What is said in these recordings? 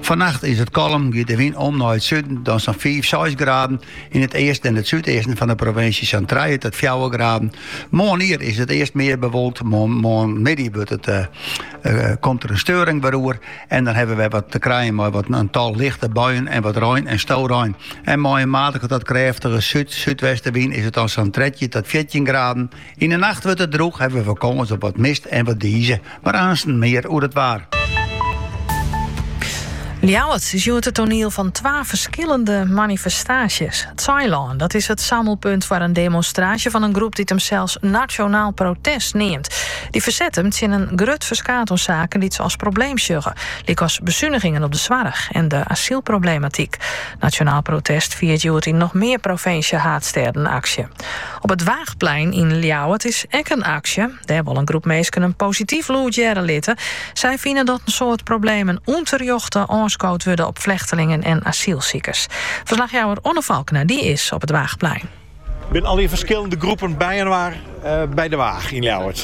Fannacht is it kalm, giet de wyn om nei it suden, dan sa'n fiif, seis graden. Yn it easten en it súdeasten fan de provinsje sa'n trije tot fjouwer graden. Moarnier is it earst mear bewolkt, mar moarnmiddei wurdt it, komt der in steuring wer oer en dan hawwe wy wat te krijen mei wat in tal lichte buien en wat rein en storein. En mei in matige tot krêftige súd-súdwestenwyn is it dan sa'n trettjin tot fjirtjin graden. Yn 'e nacht wurdt it droech, hawwe we kâns op wat mist en wat dize, mar aansten mear oer it waar. Ljouwert is hjoed it toneel fan twa ferskillende manifestaasjes. It Saailân, dat is it sammelpunt foar in demonstraasje fan in groep dy't himsels Nationaal Protest neamt. Dy ferset him tsjin in grut ferskaat oan saken dy't se as probleem sjogge, lykas besunigingen op de soarch en de asylproblematyk. Nationaal Protest fiert hjoed yn noch mear provinsjehaadstêden aksje. Op it Waagplein yn Ljouwert is ek in aksje. Dêr wol in groep minsken in posityf lûd hearre litte. Sy fine dat in soad problemen ûnterjochte oanskood wurde op flechtelingen en asylsikers. Ferslachjouwer Onno Falkena dy is op it Waagplein. Der binne allegear ferskillende groepen byinoar by De Waag yn Ljouwert.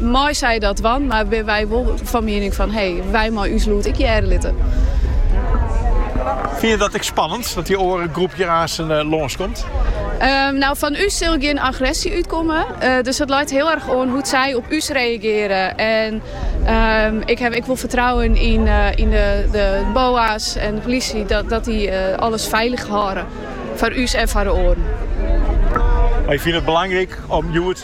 Meie sy dat dwaan, mar binne wy wol fan miening fan hey, wy meie ús lûd ek hearre litte. Fine je dat ek spannend, dat dy oare groep hjir aansen eh, lânskomt? Ehm, nou, fan ús sil gjin agressie útkomme. Eh, dus dat leit heel erg oan hoe't sy op ús reageren. En ehm, ik ha ek wol fertrouwen yn, eh, yn de, de BOA's en de politie dat, dat dy eh, alles feilich hâlde. Foar ús en foar de oaren. Mar je fine it belangryk om hjoed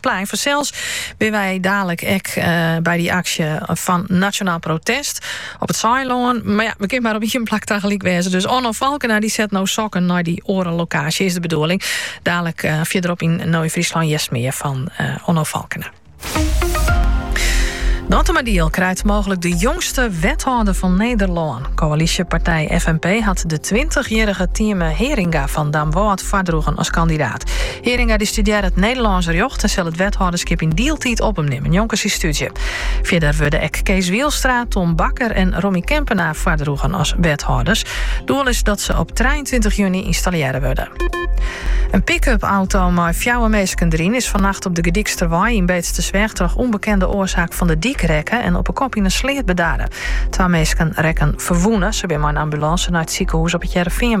Plein fansels binne wy dadelik ek by dy aksje fan Nationaal Protest op it Saailân. Mar ja, we kinne mar op ien plak tagelyk wêze. Dus Onno Falkena dy set no sokken nei dy oare lokaasje, is de bedoeling. Dadelik fierderop yn No yn Fryslân hearst mear fan Onno Falkena. Dantumadiel krijt mooglik de jongste wethâlder fan Nederlân. Koalysjepartij FNP hat de 20-jierrige Tieme Heringa fan Damwâld foardroegen as kandidaat. Heringa dy studearret Nederlânsk rjocht en sil it wethâlderskip yn dieltiid op him nimme njonken syn stúdzje. Fierder wurde ek Kees Wielstra, Tom Bakker en Rommy Kempenaar foardroegen as wethâlders. Doel is dat se op 23 juny ynstallearre wurde. In pick-up auto mei fjouwer minsken deryn is fannacht op de Gerdyksterwei yn Beetstersweach troch ûnbekende oarsaak fan de dyk rekke en op 'e kop yn in sleat bedarre. Twa minsken rekken ferwûne. Se binne mei in ambulânse nei it sikehûs op It Hearrenfean